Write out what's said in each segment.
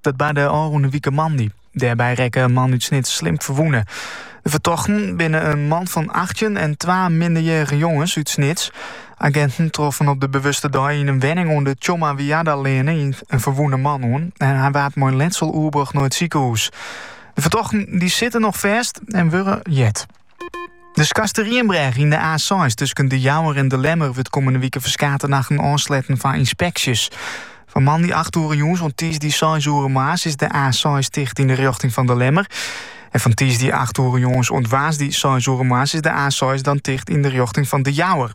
Dat barde ôfrûne wike moandei. Dêrby rekke in man út Snits slim ferwûne. De fertochten binne in man fan 18 en twa minderjierrige jonges út Snits. Aginten troffen op de bewuste dei yn in wenning oan de Tjomma Wiardaleane in ferwûne man oan. En hy waard mei letsel oerbrocht nei it sikehûs. De fertochten dy sitte noch fêst en wurde jet. De Skarsterrienbrêge yn de A6 tusken De Jouwer en De Lemmer wurdt kommende wike ferskate nachten ôfsletten foar ynspeksjes. Fan moandei 8 oere jûns oant tiisdei 6 oere moarns is de A6 ticht yn de rjochting fan De Lemmer. En fan tiisdei 8 oere jûns oant woansdei 6 oere moarns is de A6 dan ticht yn de rjochting fan De Jouwer.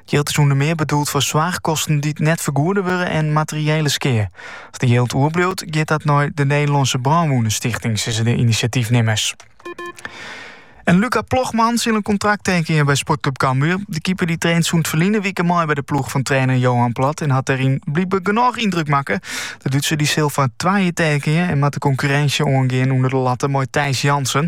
Jild is ûnder mear bedoeld foar soarchkosten dy't net fergoede wurde en materiële skea. As der jild oerbliuwt, giet dat nei de Nederlânske Brânwûnestichting, sizze de inisjatyfnimmers. En Luca Plogmann sil in kontrakt tekenje by Sportklub Cambuur. De keeper dy traint sûnt ferline wike mei by de ploech fan trainer Johan Plat en hat dêryn blykber genôch yndruk makke. De Dútser dy sil foar twa jier tekenje en moat de konkurrinsje oangean ûnder de latte mei Thijs Jansen.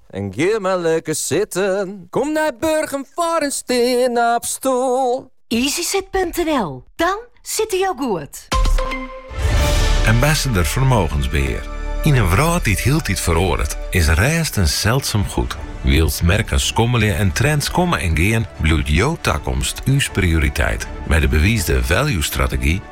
En gean mar lekker sitten. Kom nei Burgum foar in steanopstoel. Easysit.nl, dan sitte jo goed! Ambassador Vermogensbeheer. Yn in wrâld dy't hieltyd feroaret, is rêst in seldsum goed. Wylst merken skommelje en trends komme en gean, bliuwt jo takomst ús prioriteit. Mei de bewiisde value-strategy,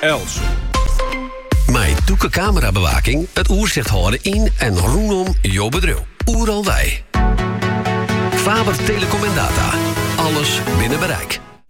Els. Mei Doeke Camerabewaking it oersicht hâlde yn en rûnom jo bedriuw. Oeral wei. Faber Telecom en Data. Alles binnen bereik.